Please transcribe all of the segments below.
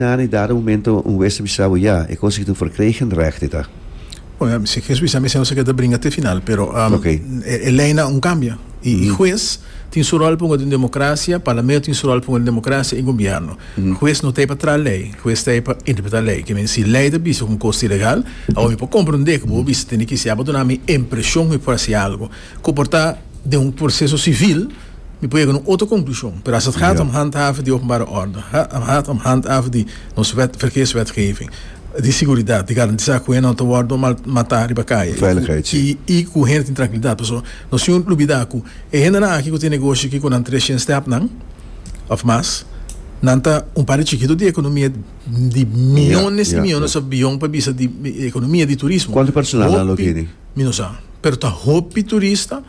Na un dado momento un wes ta bisa bo, Ya, e kos aki tur verkregen recht e ta. Oja, si Jesus bisa mester nos a keda bringa te final, pero e lei nan un kambia. I hues tin su ròl pa un aden demokrasia, parlamento tin su ròl pa un aden demokrasia i gombierno. Hues no ta ei pa tra lei, hues ta ei pa interpreta lei. Ke men si lei ta bisa ku un kos ta ilegal, awor mi por komprondé ku bo bisa tene ki si a bo duna mi impresion ku mi por hasi algu ku por ta den un proseso sivil, Mi por yega na un otro conclusion, pero as het gaat om handhaven di openbare orde, gaat om handhaven di nos wet, verkeerswetgeving, di seguridad, di garantisa cu hende no ta wordo mal mata riba caye y cu hende tin trankilidad. Paso nos tin un lubida cu e hendenan aki cu tin negoshi aki cu nan tres shen stepnan of mas, nan ta un parte chikito di economia di miyones y miyones of billon pa bisa di economia di turismo. Hopi, mi no sa, pero ta hopi turista.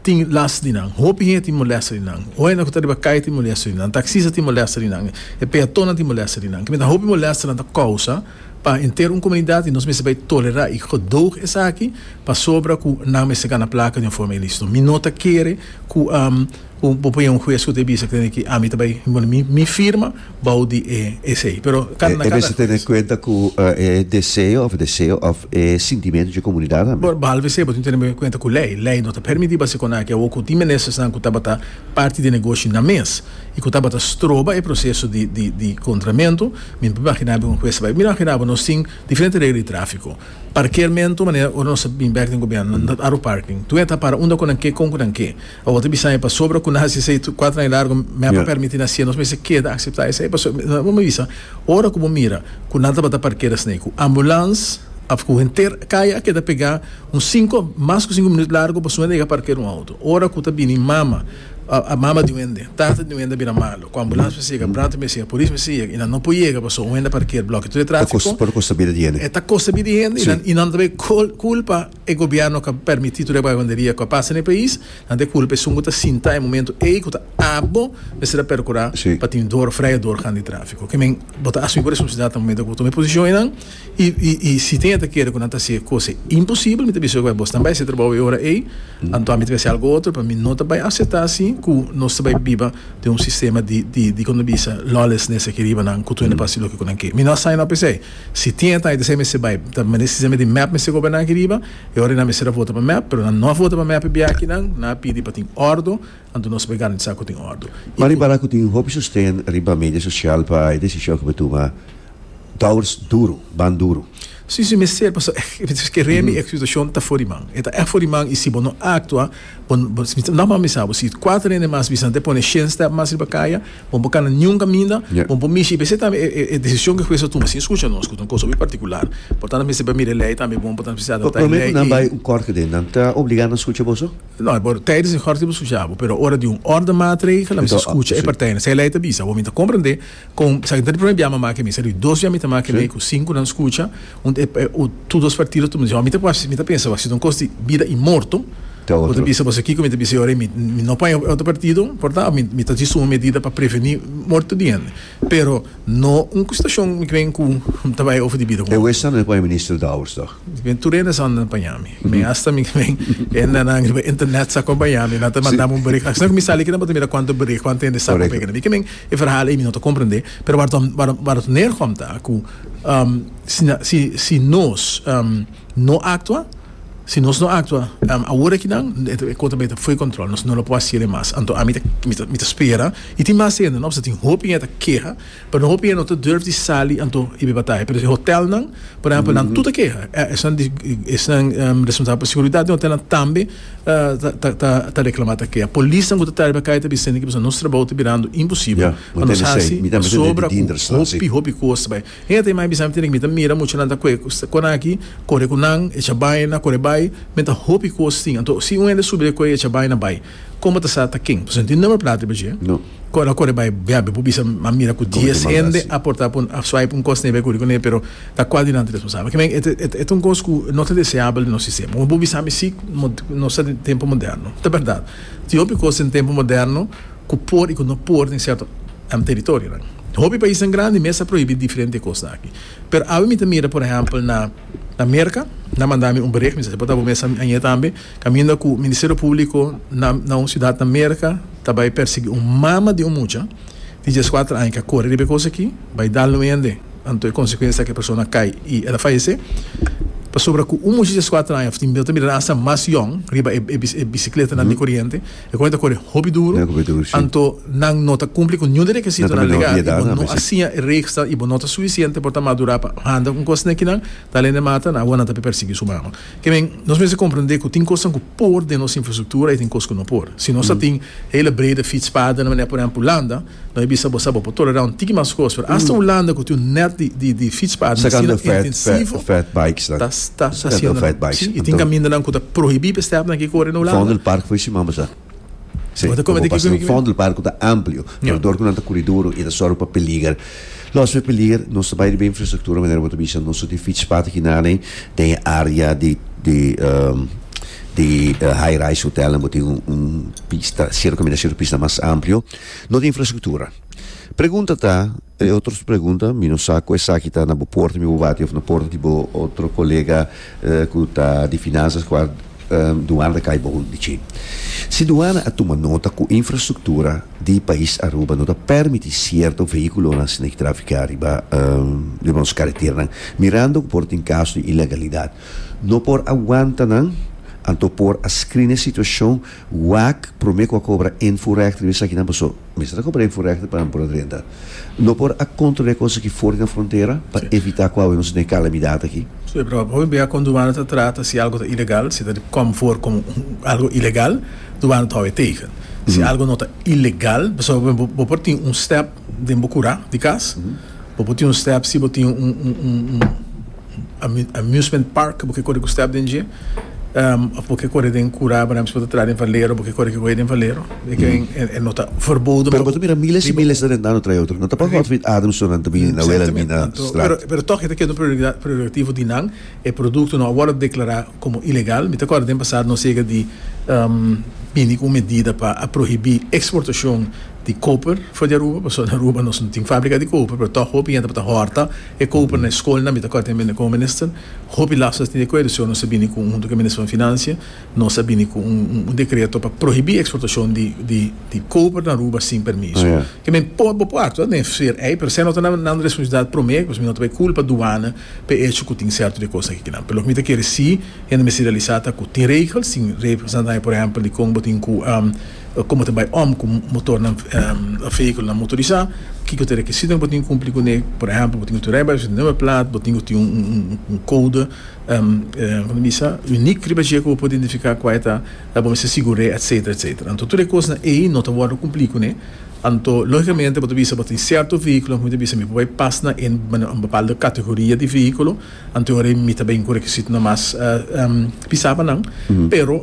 tin last di nan, hopi hende tin molesta di nan, hende ku ta riba kai tin molesta di nan, taksista tin molesta di nan, e peatonnan tin molesta di nan. Kimin ta hopi molesta nan ta kousa pa enter un komunidat i nos mester bai tolerá i gedoog esaki pasobra ku nan mester gana plaka di un forma ilísito. Mi no ta kere ku bo pone un hues ku ta bisa ke ami ta bai mi firma. bou di e esei. Pero kan na kada eskuela. E mester tene kuenta ku e deseo òf deseo òf e sintimentu dje komunidat tambe. Bor bahalbe se bo tin tene kuenta ku lei. Lei no ta permití pa se kona aki awo ku tin ministersnan ku tabata parti di negoshi na mes i ku tabata stroba e proseso di di kontramentu. Mi por imaginá bo un hues ta bai mira imaginá bo nos tin diferente regla di tráfiko. Parkermentu manera ora nos ta bin bèk den gobièrnu nan ta aru parking. Tue ta para unda ku nan ke kon ku nan ke. Awor ta bisa mi pasobra ku na hasi esei kuater aña largu mi a por permití nan siendo nos mester keda akseptá esei pasobra bo mi bisa ora ku bo mira ku nan tabata parkera esei ku ambulans a kuge henter kaya a keda pegá un sinku mas ku sinku minut largu pasobra nan yega parkera un outo ora ku ta bini mama mama di un hende tata di un hende a bira malu ku ambulans mester yega brandweer mester yega polis mester yega i nan no por yega pasobra un hende a parker blokia tur e trafiko ta kosta bida di hende i nan ta bay kulpa. E gobierno cu a permiti tur e vagabunderia cu a pasa n'e pais, nan ta e culpa esun cu ta sinta e momento ey cu ta abo mester a percura pa tin dor fray dor gan di trafico. Ke men bo ta asumi cu responsabilidad na momento cu bo tuma e posicion eynan y y si tin e ta kere cu nan ta haci e cos ey imposible mi ta bisa cu bo snan bay haci e trabao ey ora ey anto mi ta bay haci algo otro pero mi no ta bay acepta asi cu nos ta bay biba den un sistema di di di con ta bisa lawlessness aki riba nan cu tur nan por haci loke cu nan ke. Mi no a sign up esey. Si tin e taita sey mester bai ta mester sey di mep mester goberna aki riba e ora nan mester a vota pa mep pero nan no a vota pa mep e biachi nan nan a pidi pa tin ordo anto nos bai garantisa cu tin ordo y cu. Riba nan cu tin hopi sosten riba media social pa e decision cu bai tuma dours duro ban duro. Si si mester pasobra e rembi e situacion ta for di man e ta echt for di man y si bo no actua. Nòmba mi sa bo si kuater hende mas bisa antes pone shen step mas riba kaya bo no por kana niun kaminda bo no por mishi i p'esei tambe e desishon ku e hues a tuma sin skucha nos ku ta un kos hopi partikular por tantu nan mester mira e lei tambe bo no por tantu mester adaptá e lei i Promé ku nan bai un kòrte den nan ta obligá nan skucha boso? No por tèidens e kòrte bo skucha bo pero ora di un òrda maatregel nan mester skucha e partijnan si e lei ta bisa awor mi ta komprendé Con sa ki ta di prome bia mama ke mi sa di dos bia mi ta make lei ku sinku nan skucha un e u tur dos partido tu mi bisa mi ta mi ta pensa wak si ta un kos di bida i morto bo ta bisa boso kiko mi ta bisa e ora mi mi no paña otro partido porta a mi ta haci suma medida pa preveni morto di hende pero no un situashon mi kren ku mi ta bai ofri di bida ku otro. E western no e paña Minister Dowers toch? Ven tur hende zonder na paña mi. Mi hasta mi ven hendenan riba internet sa compaña mi, nan ta mandami un bericht. Asina ku mi sali aki nan por ta mira kuantu bericht, kuantu hende sa ku pega na mi. Ke men e verhal ei mi no ta komprende, pero warador Nergom ta ku si nos no aktua, si nos no aktua awor aki nan e kos ta beta for kontrol, nos no lo por haciele mas. Anto ami mi ta spera i tin mas hende, no? Pasobra tin hopi hende ta keha Pero hopi hende no ta durf di sali anto y bay bataya. Pero si hotelnan, por ehempel, nan tur ta keha. Esnan di, esnan responsabel pa seguridad den hotelnan tambe ta reclama, ta keha. Polisnan cu ta tari bay cay ta bisa hende cu bisa nos trabao ta birando imposibel. Pa nos haci sobra cu hopi, hopi cos bay. Hende ta yama y bisa mi tene, mi ta mira muchanan ta cu cu nan aki, core cu nan, echa bayna, core bay. Men ta hopi cos tin. Anto si un hende subi de cu y echa bayna bay. Como ta sa ta ken? Pasobra no tin number plata riba dje. Cu ora core bay biabe bo bisa a mira cu dies hende a porta pun a swipe un cos nebe curi cune pero ta cua dilanti responsabel. Kimen e ta un cos cu no ta deseabel den nos sistema. Como bo bisami si nos ta den tempo moderno. Ta berdad tin hopi cos den tempo moderno cu por y cu no por den cierto teritorionan. Hopi paisnan grandi mes a prohibi diferente cos aki. Pero awe mi ta mira por ehempel na Merca nan mandami un bericht mi sa si por ta bo mes añe tambe. Caminda cu Ministerio Publico na na un ciudad na Merca ta bay persegui un mama di un mucha di diescuater aña ca core riba e cos aki, bay dal nuende, anto e consecuencia ca e persona a cay y el a fayece. Pasobra cu un mucha di diescuater aña of tin no ta mira nan hasta mas yong riba e e e bicicletanan di coriente, e coriente ta core hopi duro, anto nan no ta cumpli cu niun di requisitonan legal y bo no a siña e regsnan y bo no ta suficiente por ta madura pa handa un cos na esaki nan, ta alende mata nan a wor nan ta persegui su mama. Kiemen, nos mester komprendé ku tin kosnan ku por den nos infrastruktura i tin kos ku no por. Si nos ta tin hele breda fietspaden na manera por ehèmpel Hulanda, no bai bisa bo sa bo por tolerá un tiki mas kos, pero asta Hulanda ku tin un nèt di fietspaden asina intensivo ta ta hasiendonan. Sí, i tin kamindanan ku ta prohibí pa e stèpnan aki kore na Hulanda. Si, bo ta pasa den fondo del barco ta amplio, pero dor cu nan ta curi duro y ta zorga pa peliger. Los di e peliger, nos ta bay riba e infrastructura manera bo ta bisa nos ta tin fietspad aki nan ei den e area di di di high rise hotelnan bo tin un pista, cerca caminda cerca pista mas amplio. No tin infrastructura. Pregunta ta. E otros pregunta, mi no sa cu esaki ta na bo porta mi bo bati of na porta di bo otro colega cu ta di finanzas cu a Duana ta cay bogo di chin. Si Duana a tuma nota cu infrastructura di pais Aruba no ta permiti cierto vehiculonan sina ki trafica riba riba nos careteranan mirando cu por tin caso di ilegalidad no por aguanta nan anto por a scrina e situacion wak prome cu a cobra inforecht riba esakinan paso Mester a compra info rechter pa nan por a drenta. No por a controle cosa ki for di nan frontera pa evita cu awe nos a tene calamidad aki. Su e proba. Hopi bey a con dubana ta trata si algo ta ilegal, si ta di com for como algo ilegal, dubana ta hopi tegen. Si algo no ta ilegal, pasobra por ejemplo bo por tin un step den bo cura di cas, bo por tin un step si bo tin un. Amusement park bo ke kore ku step den dje of bo ke kore den kura bo na mismo ta traha den valero bo ke kore ku e den valero e no ta verboden Pero bo ta mira miles i miles ta rentando trae otro no ta pa Godfrey Adamson nan ta bini na wela bini na strat. Pero tog e ta keda un prioridad priorativo di nan e produkto no a wòrdu deklará komo ilegal mi ta kòrda den pasado nos yega di bini ku un medida pa a prohibí eksportashon di koper for di Aruba pasobra na Aruba nos no tin fábrika di koper pero tog hopi hende bo ta hòrta E koper na e skolnan, mi ta kòrda tambe na e kominister, hopi las nos tin di akuerdo, si nos a bini ku huntu ku e minister van Financia, nos a bini ku un un dekreto pa prohibí eksportashon di di di koper na Aruba sin permiso. Ke men por bo por aktua den sfer ei, pero esei no ta nan nan responsabilidat promé, pasobra mi no ta bai kulpa duana pa e echo ku tin sèrto di kosnan akinan. Pero loke mi ta kere si hende mester realisá ta ku tin regels, tin regels nan ta haña, por ehèmpel, dikon bo tin ku. Komo ta bai om ku motornan, vehiculonan motorisá, kiko ta e rekisitonan ku bo tin ku kumpli kuné? Por ehèmpel, bo tin ku tin un rijbewijs, un nummer plaat, bo tin ku tin un kode, kua ta bisa, uniek riba dje ku bo por identifiká kua e ta, bo mester sigur'é, etsetera, etsetera. Anto tur e kosnan ei no ta wòrdu kumplí kuné. Anto, lógikamente bo ta bisa bo tin sierto vehiculonan ku mi ta bisa mi por bai pas na e bapalda kategoria di vehículo. Anto ora mi ta bin ku rekisitonan mas pisaba nan, pero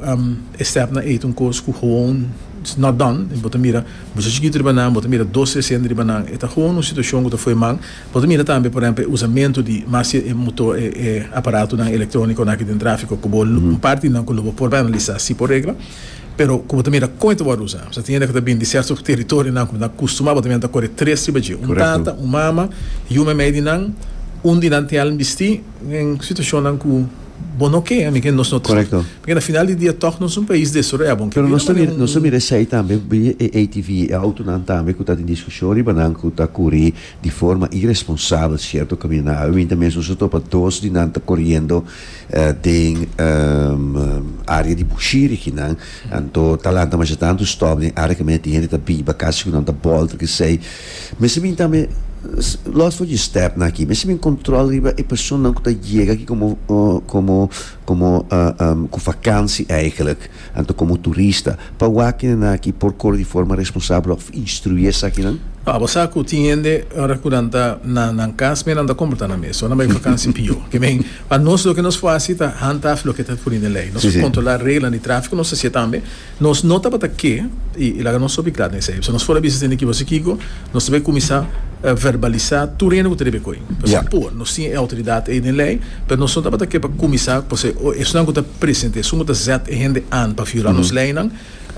e stèpnan ei ta un kos ku howon is not done, bo ta mira mucha chikitu riba nan, bo ta mira dos tre sende riba nan, e ta howon un situashon ku ta fo'i man, bo ta mira tambe por ehempel e usamentu di mas si e moto e aparatonan elektronikonan aki den trafiko ku bo un parti di nan ku lo bo por bai analisá si por regla. Pero ku bo ta mira kon e ta wòrdu usa, bo ta tiene ku ta bini di sèrto teritorionan ku bo ta akustumá bo ta mira nan ta kore tres riba dje, un tata, un mama i un meimei di nan, un di nan tèl bisti den situashonnan ku bo no ke, ami ke nos no ta esplika. Pasobra na final di dia tòg nos un pais desaroyá, bon ke bira manera un. Nos ta mira esei tambe, mira e atv, e outonan tambe ku ta tin diskushon riba nan ku ta kuri di forma iresponsabel sierto kaminda. Awe minta mes nos a topa dos di nan ta koriendo. den área di bushiri kinan anto ta lanta masha tantu stòp den área ku misti hende ta biba kasi ku nan ta bòlta kesei mester mi tambe lòs for dje stèpnan aki mester mi kòntròl riba e personanan ku ta yega aki komo komo komo ku vakansi eikèlèk. Anto komo turista, pa wak nan aki por kore di forma responsabel òf instruí esakinan? Pa bo sa ku tin hende ora ku nan ta na nan kas mira nan ta komportá nan mes, ora nan bai vakansi pió. Ke men, pa nos loke nos por hasi ta hanta af loke ta puri den lei. Nos por kontrolá reglanan di tráfiko, nos ta hasié tambe nos no tabata ke i laga nos sopi klat na esei. Nos for a bisa tende ki bo a hasi kiko? Nos ta bay cuminsa verbalisa tur hende cu ta debe coe. Pasobra e por. Nos tin e autoridad ey den ley, pero nos no tabata ke pa cuminsa pasobra e o esunnan cu ta presente, esun cu ta zet e hende aan pa viola nos leynan,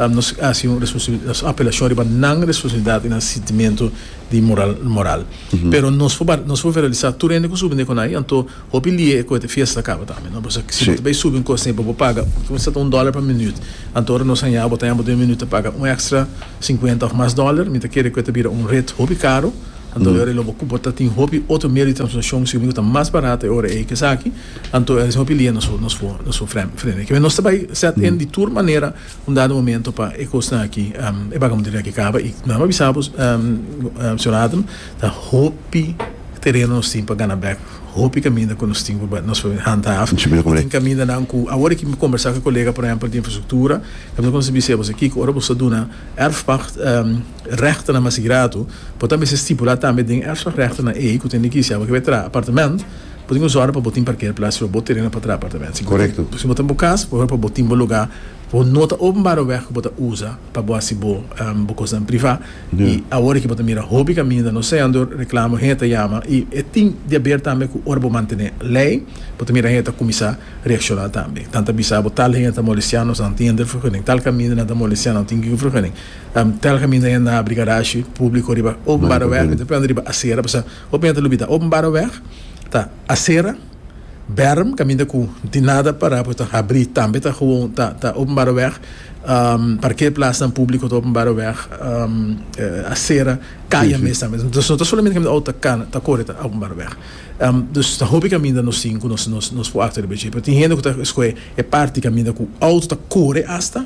nos haci un nos apelacion riba nan responsabilidad y nan sintimento di moral. Pero nos por verbalisa tur hende cu subi den conai, anto. Hopi lia e cohete fiesta caba tambe no pasobra si bo ta bay subi un cos tin bo paga cuminsa ta un dollar pa minuut anto ora nos haña bo ta haña bo den un minuut ta paga un extra cincuenta of mas dollar mi ta kere cu e ta bira un ret hopi caro anto ora elo bo ta tin hopi otro medio di transportacion siumi cu ta mas barato e ora ey cu esaki anto esa hopi lia nos nos for nos for fremi frene kibe nos ta bay set in di tur manera un dado momento pa e cosnan aki e bagamuderinan aki caba y nan a bisa bo señor Adam Ta hopi tereno nos tin pa gana bek, hopi kaminda ku nos tin ku nos por hanta af. Tin kamindanan ku awor mi kombersá ku e kolega por ehèmpel di infrastruktura, mi ta konsegui bis'e boso, Kiko, ora boso ta duna èrfpagt règtenan mas gratu, bo ta mester stipulá tambe den e èrfpagt règtenan ei ku ta indiká si abo ke bo e traha apartamènt, bo tin ku zòrge pa bo tin parkeerplats riba bo tereno pa traha apartamènt. Si bo ta boka, por bo tin bo lugá Bo no ta openbaroeweg ku bo ta usa pa bo hasi bo bo kosnan privá i awor aki bo ta mira hopi kaminda no sea dor reklamo hende ta yama i e tin di haber tambe ku ora bo mantené lei bo ta mira hende ta kuminsá reakshoná tambe nan ta bisa bo tal hende ta molestianos nan tin hende vergunning tal kaminda nan ta molestia nan tin kiko vergunning tal kaminda hende nan abri garashi públiko riba openbaroeweg riba asera pasá hopi hende ta lubidá openbaroeweg ta asera. Berm caminda cu tin nada para porque ta habri tambe ta gewoon ta ta openbare weg parkeerplaatsnan publico ta openbare weg acera caya mes tambe dus no ta solamente caminda auto ta cana ta core ta openbare weg dus ta hopi caminda nos zien cu nos nos nos por acto riba dje pero tin hende cu ta scoge e parti caminda cu auto ta core hasta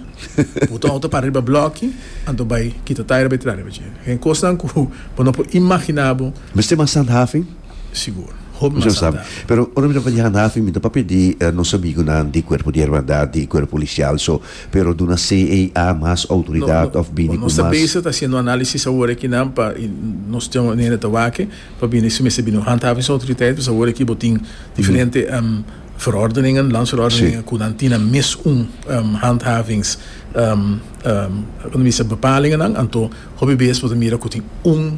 bo ta auto ta para riba bloki anto bay kita taya riba y traha riba dje den cosnan cu bo no por imagina bo. Mester mas handhaving? sigur. Hopi mas a da. Pero ora mi ta banja Hanafi mi ta pa pidi nos amigunan di Cuerpo di Hermandad y Cuerpo Policial so pero duna CAA mas autoridad of bini cu mas. Nos ta bezig ta haciendo análisis awor aki nan pa y nos tin un hende ta wak pa bini si mester bini un handhavings autoriteit pues awor aki bo tin diferente verordeningen, landsverordeningen cu nan tin nan mes un handhavings bepalingen nan anto hopi bes bo ta mira cu tin un.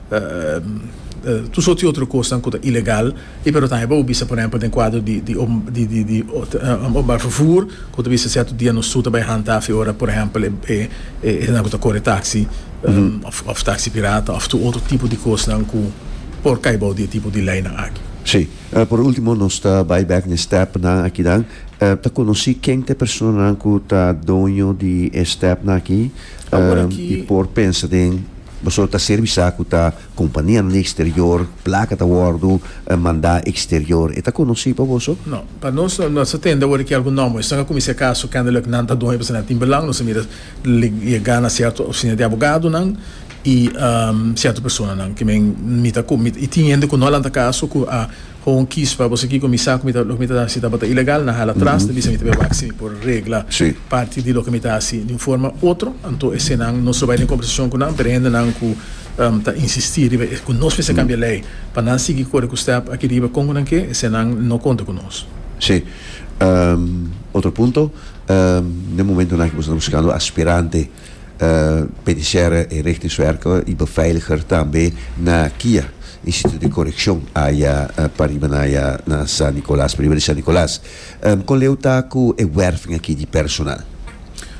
Tur soti otro kosnan ku ta ilegal i pero tambe pa bo bisa por ehèmpel den kuadro di di di openbaar vervoer ku ta bisa sierto dia nos tur ta bai hanta afe ora por ehèmpel e e e hende ku ta kore taksi of of taksi pirata of tur otro tipo di kosnan ku por kai bou di e tipo di leinan aki. Si. Por ultimo nos ta bai bek na e stèpnan akinan. Ta konosí ken ta e personanan ku ta doño di e stèpnan aki i por pensa den. Boso ta serbi sa ku ta kompanianan di eksterior, plaka ta wòrdu mandá eksterior, e ta konosí pa boso? No. Pa nos, no nos a tende awor di ki algu nòmber. Esnan a kuminsá kaso kèndelik nan ta dueño pasobra nan tin belang. Nos a mira yegá na sierto ofisina di abogadonan i sierto personanan, ki men mi ta i tin hende ku no a lanta kaso ku a Hoon kies pa bo seki ku mi sa ku mi ta loke mi ta hasi tabata ilegal na hala tras ta bisa mi ta bai wak si mi por regla parti di loke mi ta hasi di un forma u otro anto esenan nos lo bai den kombersashon ku nan pero hendenan ku ta insistí riba e ku nos mester kambia lei pa nan sigui kore ku stèp aki riba kon ku nan ke esenan no konta ku nos. Sí otro punto den momentonan ku boso ta buskando aspirante. Penitenciaria e Richterswerke i Beveiliger tambe na kia Instituto di Correccion aya pariba na aya na San Nicolas, pariba di San Nicolas. Con leu ta cu e werving aki di personal?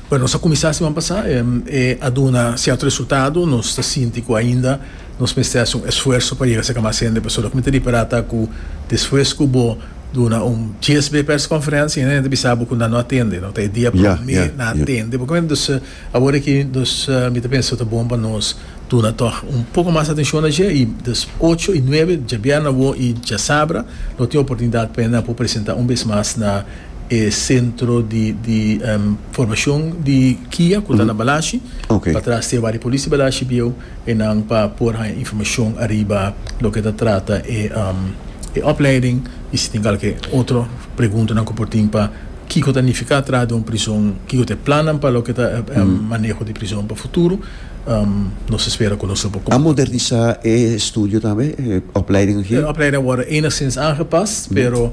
Bueno, nos a cuminsa siman pasa, e a duna cierto resultado, nos ta sinti cu ainda nos mester haci un esfuerso pa yega cerca mas hende, pasobra cu mi ta ripara ta cu despues cu bo. Duna un dies be persconferencia y nan e ta bisa bo cu nan no a tende, no ta e dia prome nan a tende bo comprende, dus awor aki dus mi ta pensa ta bon pa nos duna tog un poco mas atencion na dje y dus ocho y nuebe djabièrnè awo y djasabra lo tin oportunidad p'e nan a por presenta un bes mas na e centro di di formacion di kia cu ta na Balashi patras te Wari Polis di Balashi bieu. E nan pa por haña informashon ariba loke ta trata e opleiding i si tin kalke otro preguntanan ku por tin pa kiko ta nifiká traha den un prizon, kiko ta e plannan pa loke ta e maneho di prizon pa futuro, nos a spera ku nos lo por. A modernisá e estudio tambe, e opleiding aki? E opleiding a wòrdu enigstins aangepas, pero.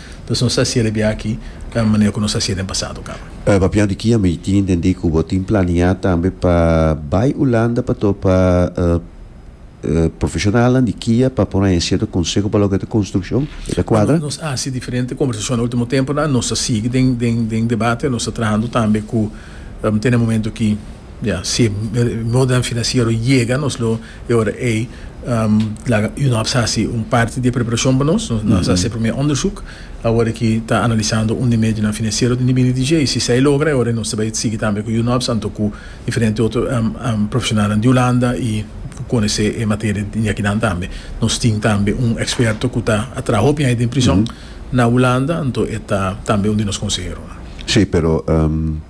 Entonces nos ta hacia de bia aki ca manera cu nos hacia den pasado caba. Papian di ki ami tin intendi cu bo tin planea tambe pa bay Hulanda pa topa profesionalnan di kia pa por haña cierto conseho pa loke ta construccion? E ta cuadra? Nos a haci diferente conversacion na ultimo temponan, nos ta sigui den debate, nos ta trahando tambe cu tene momento ki. Ya, si e modèl finansiero yega nos lo e ora ei, laga UNOPS hasi un parti di e preparashon pa nos. Nos a hasi e promé ondersuk awor aki ta analisando un di medionan finansiero den di bini di dje. I si esei logra e ora ei nos ta bai sigui tambe ku UNOPS anto ku diferente otro profeshonalnan di Hulanda i ku konosé e materia di akinan tambe. Nos tin tambe un eksperto ku ta a traha hopi aña den prison na Hulanda anto e ta tambe un di nos konseheronan. Sí, pero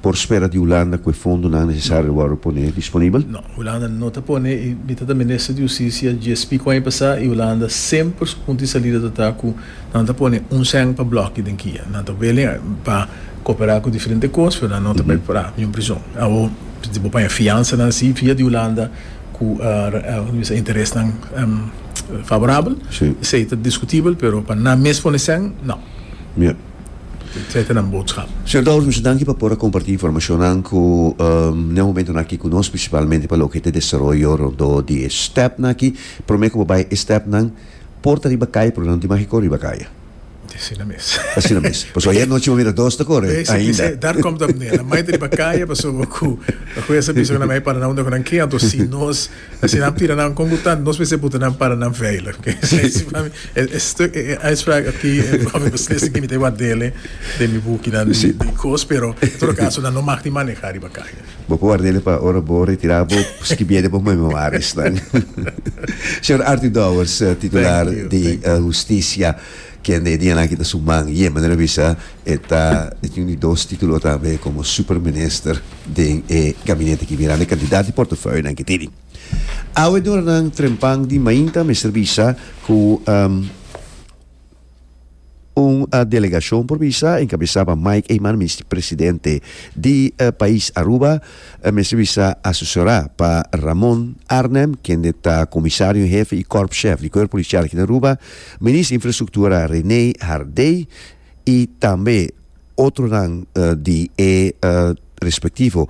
por spera di Hulanda ku e fondonan nesesario lo wòrdu pone disponibel? No, Hulanda no ta pone i mi ta ta minister di hustisia gsp ku aña pasá i Hulanda semper su punto di salida ta ta ku nan ta pone un sèn pa blòki den kia. Nan ta wili pa koperá ku diferente kos pero nan no ta bai pará niun prizon. Awo di bo paña fiansanan sí via di Hulanda ku interesnan favorabel esei ta diskutibel pero pa nan mes pone sèn, no. etcetera nan botskap. Señor Douwes, mi su danki pa por a komparti informashonnan ku ne momentonan aki ku nos, prinsipalmente pa loke ta e desaroyo rondó di e stèpnan aki. Promé ku bo bai e stèpnan por ta riba kaya, pero nan tin maki kor riba kaya. Te asina mes. Ta asina mes. Paso ayèr nochi bo mira dos ta kore ainda. Daar kòm ta manera. Mai ta riba kaya pasobra ku Hues a bisa ku nan mei para nan unda ku nan ke anto si nos Si nan tira nan con bu tand nos mester puta nan para nan veilig. E stuk, e uitspraak aki pa mi beslist aki mi ta e ward'ele den mi bukinan di di kos, pero en todo caso nan no mag di maneha riba caña. Bo por ward'ele pa ora bo retira bo skibiende bo memoariesnan. Señor Arthur Dowers, titular di Husticia. Kende e dianan kita su man ye manera bisa e ta e tin un di dos titulo tambe komo superminister den e gabinete ki bira na e kantidat di portofeuyonan ke tini. Awe doranan trempan di mainta mester bisa ku un delegashon por bisa enkabesá pa Mike Eman Misti presidente di pais Aruba mester bisa asesorá pa Ramon Arnem kende ta komisario en hefe i korpshef di kuerp polisial aki na Aruba Minister Infrastructura René Hardé y tambe otronan di e respectivo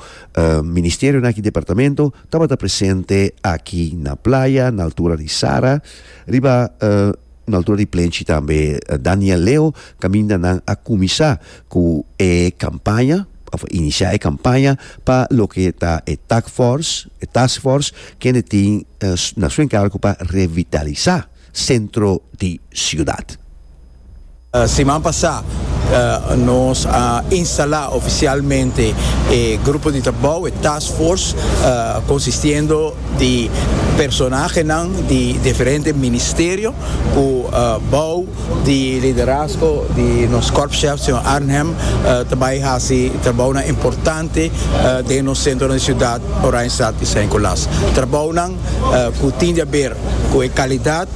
Ministerionan aki Departamento tabata presente aki na Playa na altura di Sara riba na altura di Plenchi tambe. Daniel Leo caminda nan a cuminsa cu e campaña of a inicia e campaña pa loke ta e tac force, e task force kende tin na su encargo pa revitaliza. sentro di ciudad. Siman pasá nos a instalá oficialmente e grupo di trabou, e task force, consistiendo di personahenan di diferente ministerio cu bou di liderazgo di nos Korpschef, señor Arnhem, ta bay haci trabounan importante den nos centronan di ciudad, Oranjestad y Saint Colas. Trabounan. ku tin di aber ku e kalidat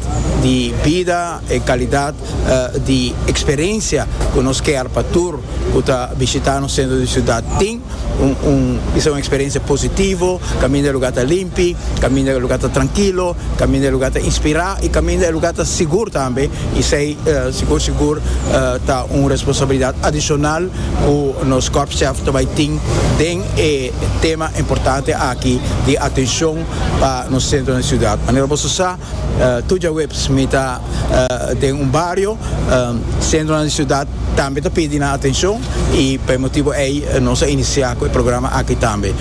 di bida, e kalidat di eksperensia ku nos kear pa tur ku ta bishitá nos sentro di siudat tin, un bisa un eksperensia positivo, kaminda e lugá ta limpi, kaminda e lugá ta trankilo, kaminda e lugá ta inspirá i kaminda e lugá ta sigur tambe, i esei sigur sigur ta un responsabilidat adishonal ku nos kòrpschèf ta bai tin den e. E tema importante aki di atencion pa nos centro den ciudad. Manera boso sa, tur djaweps mi ta den un bario, centronan di ciudad tambe ta pidi nan atencion y pa e motibo ey nos a inicia cu e programa aki tambe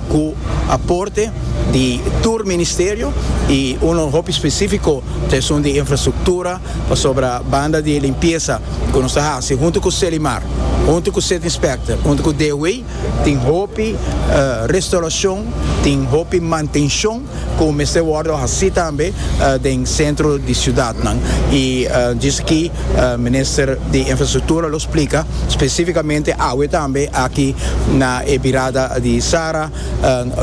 cu aporte di tur ministerio y uno hopi specifico ta esun di infrastructura pasobra banda di limpieza cu nos ta haci hunto cu Selimar, hunto cu Setinspector, hunto cu DW. Tin hopi restauracion, tin hopi mantencion cu mester wordo haci tambe den centro di ciudadnan. Y djis aki Minister di Infrastructura lo splica specificamente awe tambe aki na e birada di Sara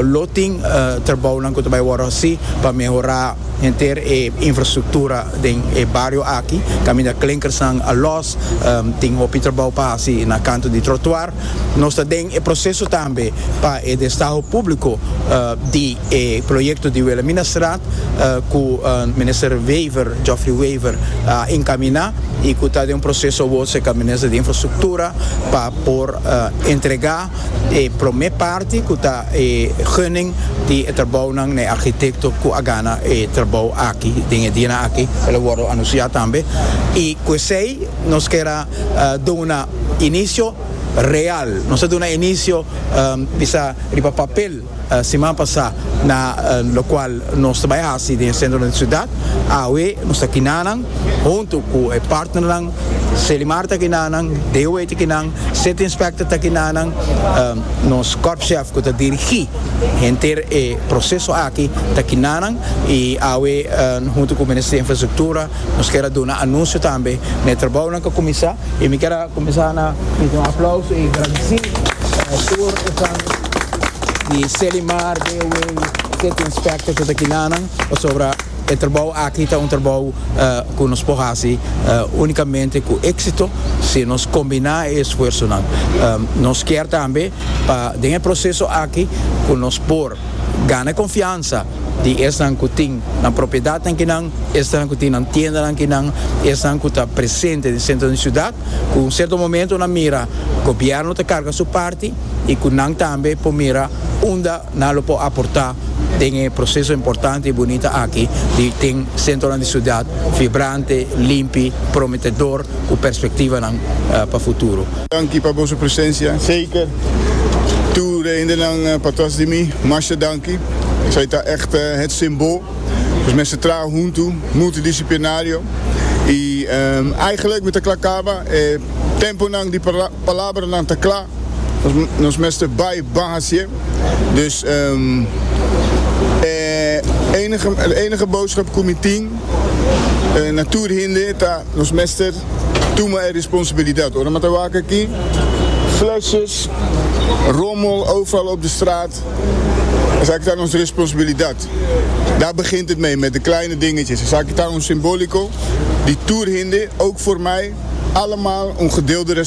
lo tin trabounan cu ta bay wordo haci pa mehora henter e infrastructura den e bario aki, caminda clinkersnan a los, tin hopi trabou pa haci na canto di trotuar. Nos ta den e proseso tambe pa e destaho públiko di e proyekto di Wilhelminastraat ku Minister Wever, Geoffrey Wever, a enkaminá i ku ta den un proseso awor serka di Minister di Infrastruktura pa por entregá e promé parti ku ta e gunning di e trabounan na e arkitekto ku a gana e trabou aki. Den e dianan aki el a wòrdu anunsiá tambe i ku esei nos kera. duna inicio real, nos a duna inicio bisa riba papel siman pasa na locual nos ta bay haci den e centro den ciudad, awe nos ta kina nan hunto cu e partnernan, Selimar ta kina nan, DOA ta kina nan, City Inspector ta kina nan, nos Corp Chef cu ta dirigi henter e proceso aki ta kina nan y awe hunto cu Ministerio Infrastructura Nos kier a duna anuncio tambe na e trabounan cu a cuminsa y mi kier a cuminsa na hisi un aplauso y gradici tur esnan di Selimar, Deewey, City Inspector cu ta aki nanan pasobra e trabou aki ta un trabou cu nos por hasi unicamente cu exito si nos combina e esfuersonan. Nos kier tambe pa den e proceso aki cu nos por gana e confiansa di esnan ku tin nan propiedatnan kinan, esnan ku tin nan tiendanan kinan, esnan ku ta presente den sentro den siudat, ku un serto momentu nan mira gobièrnu ta karga su parti i ku nan tambe por mira unda nan lo por aportá den e proseso importante i bunita aki di tin sentronan di siudat vibrante, limpi, prometedor. cu perspectivanan pa futuro. Danki pa boso presencia. Zeker. Toe reendenan patras di mi, masha danki. Esai ta echt het simbo. Nos mester traha huntu, multidisciplinario. I eigenlijk mi ta kla caba e temponan di palabranan ta kla. Nos mester bay ban hacié. Dus e enige boodschap cu mi tin na tur hende ta Nos mester tuma e responsabilidad. Ora mi a ta wak aki, flesjes, rommel, oofval op de straat, esaki ta nos responsabilidad. Daar begint het mee, met de kleine dingetjes. Esaki ta un simbolico di tur hende, ook voor mij, allemaal un gedeelde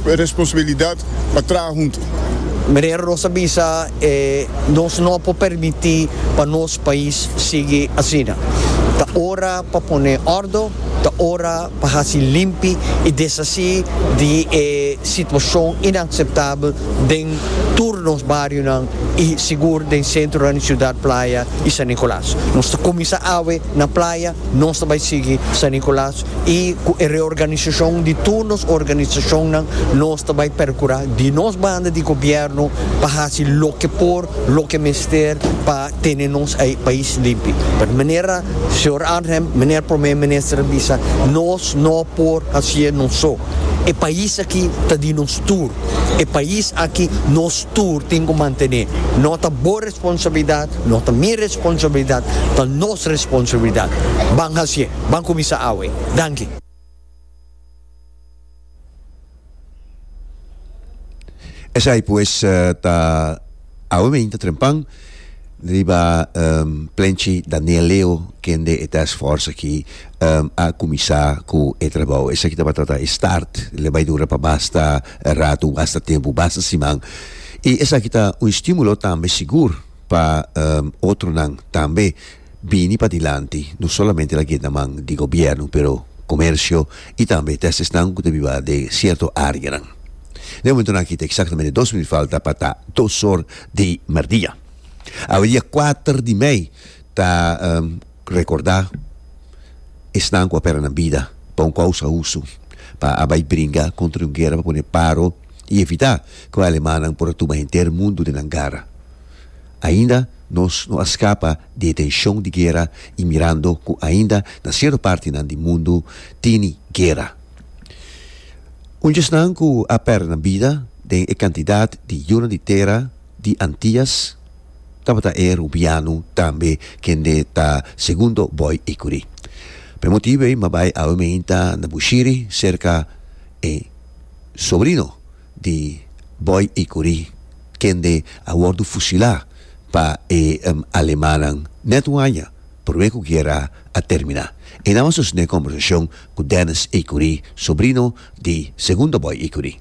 responsabilidad pa traha hunto. Meneer Rosa bisa, Nos no por permiti pa nos pais sigui asina. Ta ora pa pone ordo. Ta ora pa haci limpi y deshaci di e situacion inaceptabel den tur nos barionan y sigur den centronan di Ciudad Playa y San Nicolas. Nos ta cuminsa awe na Playa, nos ta bay sigui San Nicolas y cu e reorganisacion di tur nos organisacionnan nos ta bay percura di nos banda di Gobierno pa haci loke por, loke mester pa. tene nos ei pais limpi. Pero manera señor Arnhem, manera Prome Minister a bisa, nos no por hacié nos so. E pais aki ta di nos tur. E pais aki nos tur tin cu mantené. No ta bo responsabilidad, no ta mi responsabilidad, ta nos responsabilidad. Ban hacié, ban cuminsa awe. Danki. Esai pues ta awe meinta trempan riba um, Plenchi Daniel Leo kende e task force aki um, a kuminsá ku e trabou. Esaki tabata ta e start, lo bai dura pa basta ratu, basta tempu, basta siman. I esaki ta un estímulo tambe sigur pa um, otronan tambe. Bini pa dilanti no solamente la genta man di gobiernu pero comercio y tambe testesnan cu ta biba den cierto areanan. Na e momentonan aki ta exactamente dos minuut falta pa ta dos or di merdia. Awe dia cuater di mei ta recorda esnan cu a pera nan bida pa un causa husu, pa a bay bringa contra un guera pa pone paro y evita cu e alemannan por a tuma henter mundo den nan gara. Ainda nos no a skapa di e tenshon di guera i mirando ku ainda na sierto partinan di mundu tini guera. Un djesnan ku a pèrdè nan bida den e kantidat di yunan di tera di Antias tabata e rubiano tambe kende ta segundo bòi ikuri. P'e motibu ei m'a bai awe meinta na Bushiri serka e sobrino di Boy y Curie kende a wordo fusila pa e Alemannan net un aña prome cu guera a termina. E nan a sostene e conversacion cu Dennis y Curie, sobrino di Segundo Boy y Curie.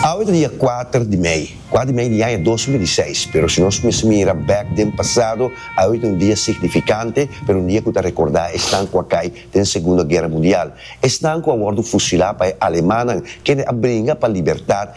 Awe ta dia kuater di mei, kuater di mei di yaña dos mil i seis, pero si nos mester mira bek den pasado, awe ta un dia signifikante, pero un dia ku ta rekordá esnan ku a kai den Segundo Guera Mundial, esnan ku a wòrdu fusilá pa e alemanan, kende a bringa pa libertat,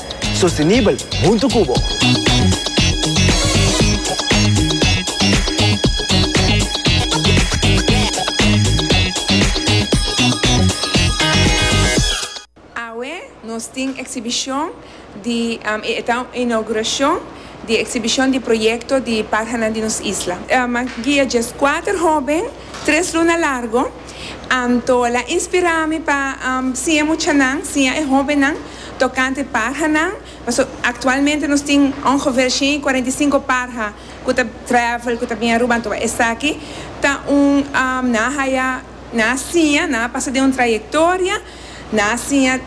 Sostenibel hunto cu bo. Awe nos tin exhibicion di e eta un inauguracion di exhibicion di proyecto di Parhanan di nos isla. Guia djes cuater hoben Tres luna largo, Antola inspirá mi pa siña muchanan, siña e hóbennan tokante parhanan. Paso aktualmente nos tin ongefeer shen i kuarenta i sinku parha ku ta travel, ku ta bini Aruba. Anto esaki ta un, nan a haya, nan a siña, nan a pasa den un trayektoria, nan a siña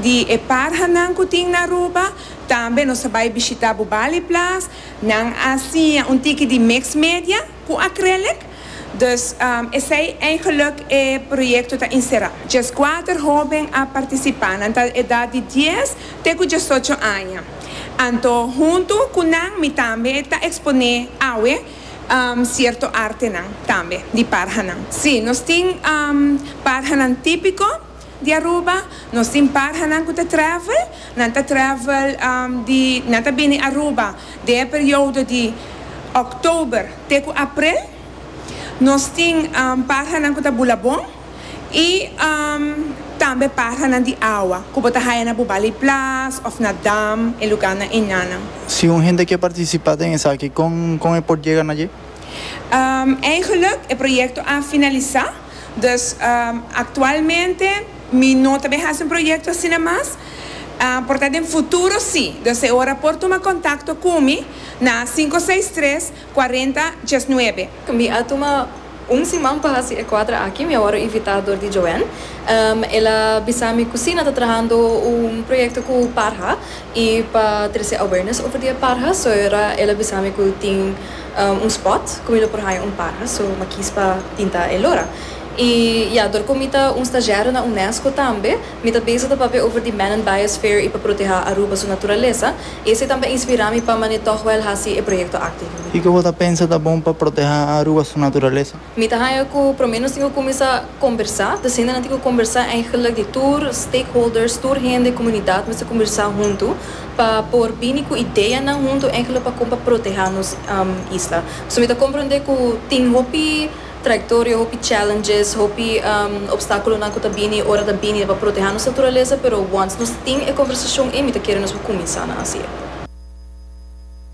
di e parhanan ku tin na Aruba. Tambe nos a bai bishitá Bubali Plas, nan a siña un tiki di mixed media. Cu acrylic, dus esey eigenlijk e proyecto ta encera. Diescuater hoben a participa, nan ta edad di dies te cu diesocho aña. Anto hunto cu nan mi tambe ta expone awe cierto artenan tambe di parhanan. Si, nos tin parhanan tipico. Di Aruba, nos tin parhanan cu ta travel, nan ta travel di, nan ta bini Aruba den e periodo di October te cu April, nos tin parhanan cu ta bula bon y tambe parhanan di awa cu bo ta haya na Bubali Plas of na Dam, e lugarnan enanan. Si un hende ke participa den esaki con con e por yega na dje? Eigenlijk, e proyecto a finalisa. Dus, aktualmente mi no ta bin hasi un proyekto asina mas, por ta den futuro si. Dus e ora por tuma kontakto ku mi na sinku seis tres kuarenta dies nuebe. Mi a tuma un siman pa hasi e kuadra aki, mi a wòrdu invitá dor di Joanne. El a bisa mi ku si nan ta trahando un proyekto ku parha i pa trese awareness over di e parha. So e ora el a bisa mi ku tin. un spot cu mi lo por haya un parha so m'a kies pa tinta el ora y ya dor cu mi ta un stagiario na unesco tambe mi ta bezig ta papia over di Manon Biosphere y pa proteha Aruba su naturalesa y esey tambe a inspira mi pa mane toch wel haci e proyecto aki. Kico bo ta pensa ta bon pa proteha Aruba su naturalesa? Mi ta haña cu prome nos tin cu cuminsa combersa, ta siendo nan tin cu combersa eigenlijk di tur stakeholders, tur hende, comunidad mester combersa hunto pa por bini cu ideanan hunto eigenlijk pa con pa proteha nos isla. So mi ta comprende cu tin hopi trayectoria, hopi challenges, hopi obstaculonan cu ta bini ora ta bini pa proteha nos naturaleza, pero once nos tin e combersacion ey mi ta kere nos cu cuminsa nan haci'e.